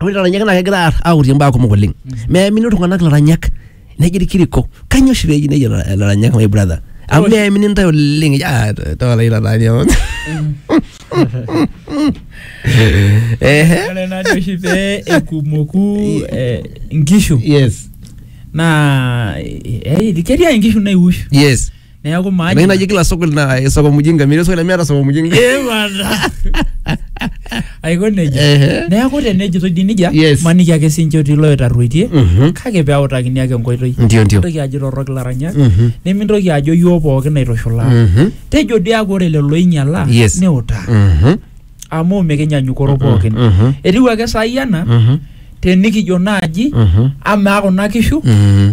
ore ilaranyaki naa kegira aar- aurie mbaa kumok oleng meamini iltung'anak ilaranyak nejo irkiriko kanyoo oshi peji nejo ila- ilaranyak my brother amu meamini ntae oleng eji, "Ah, to- toola ilo aranya amu." Ehe. ore najo oshi pee ekumoku eh, inkishu yes naa eh, ketii ake inkishu naiush yes neeku Ena maanyina naji kila soko na eh, soko mjinga, mimi soko mimi soko mjinga. Eh, bana. aiko nejia Ehe. neeku tenejitoi dii nejia Yes. maniki ake sinche otii loitarruoitie Mhm. kake peautakini ake enkoitoi Ndio ndio. mintoki ajo torrok ilaranyak Mhm. nimintoki ajo yioo pookin aitushulaa Mhm. tejo dii ake ore lelo oinyialaa Yes. niutaa Mhm. amu mikinyanyukoro pookin Mhm. etiu ake saai ena Mhm. tenikijo naaji Mhm. amaa kuna kishu Mhm.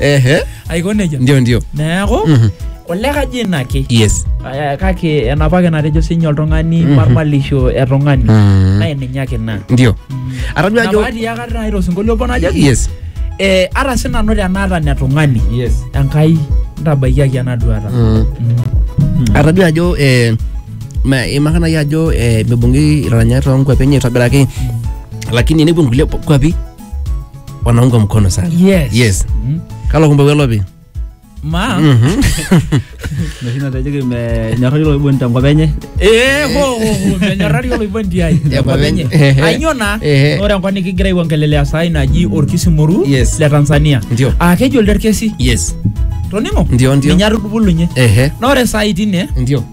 Ehe. aiko nejia Ndio ndio. neeku Mhm. ole kaji ina ake Yes. Eh, kake enapa ake natejo sinye oltung'ani Mhm. marmalisho e tung'ani Mm. naa ninye ake ina Ndio. Atadua ajo napaati akata nai tosinkolio obo najoki yes. eh, ara sinanu tenaata ne tung'ani Yes. enkai ntabaikiaki ena duata Mm. Atadua ajo eh ma imaka nai ajo eh mibung'i ilaranyani too nkuapi enye aitobiraki lakini nepuo nkulie kuapi wanaunga mkono sana Yes. yes. Mm. kalo kumbe welopi Ma. Noshi natejoki menyorrari oloiboni tenkop enye. Eh, ho, ho, ho, menyorrari oloiboni tiai. Tenkop enye. Ehe. Ainyoo naa? Ehe. Ore enkop nikigira aiongelelea saai naji Orkisimoru Yes. le Tanzania. Ndio. Aa keji olderkesi. yes Toning'o? Ndio, ndio. Ninye atubulunye. ehe Na ore saai tine ndio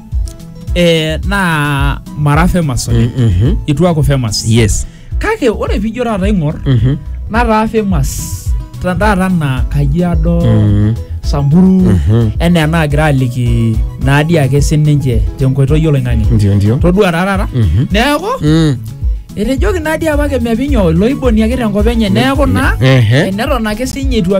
eh, naa mara famous oleng. Mhm. Itu aaku famous. yes kake ore pijo taata aing'or Mhm. nataa famous ta- taata anaa kajiado Mhm. samburu Mhm. enaa enaagira aliki naadii ake sininche tenkoitoi oloing'ang'e ndio ndio todua taa taata Mhm. neeku Mm. etejoki naadii apake mepinyo iloiboni ake tenkop enye neeku naa Ehe. eneton ake sinye itu